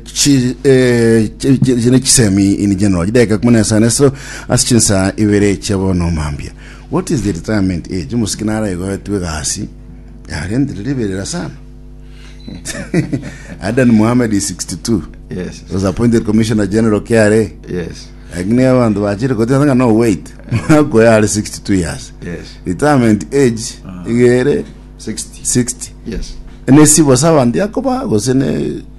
Chi- eh, chi- chi- chi- ne chisemi in general chideka kumi na isano esiro ase chinsa ibere chia bono omambia what is the retirement age omosiki nara igoetwe egasi yarentire riberera sana adan mohamed is 62 Yes. was appointed commissioner general kra Yes. lakini abantu bachire kotira ng'a no wait ako yari 62 years Yes. retirement age igere 60. 60 Yes. nesibo sabanti akoba gose ne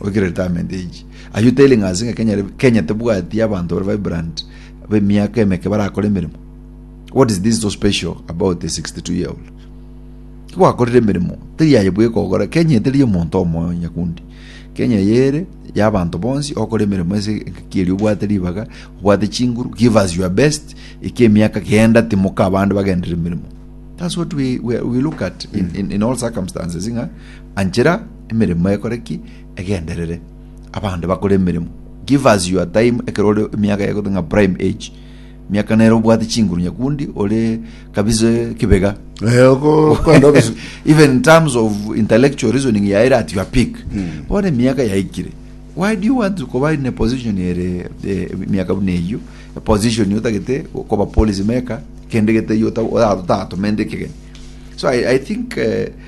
Oikire retirement age. Are you telling us ng'a Kenya, Kenya tebwati abantu bare vibrant b'emiaka emeke barakora emeremo? What is this so special about a 62 year old? Gwakorire emeremo, teri aye bwe kogora. Kenya eteri omonto omoyo nyakundi. Kenya yere ya abantu bonsi okora emeremo ase enkakiri obwate ribaga, obwate chinguru, give us your best. Eke emiaka genda timoka abande bagendere emeremo. That's what we, we, we look at in, in, in all circumstances ng'a anchera emeremo ekore ki? Egenderere. Abande bakore emeremo. Give us your time ekero ore emiaka yago ng'a prime age. Miaka nere obwate chinguru nyakundi ore kabisa kibega. Eh, oko- kwenda obis- Even in terms of intellectual reasoning yaere at your peak. Bono emiaka yaikire. Why do you want to kuba in a position ere eh, miaka buna eyio? A position otagete koba policy maker kende gete yota otatomende ekegeni. So I, I think uh,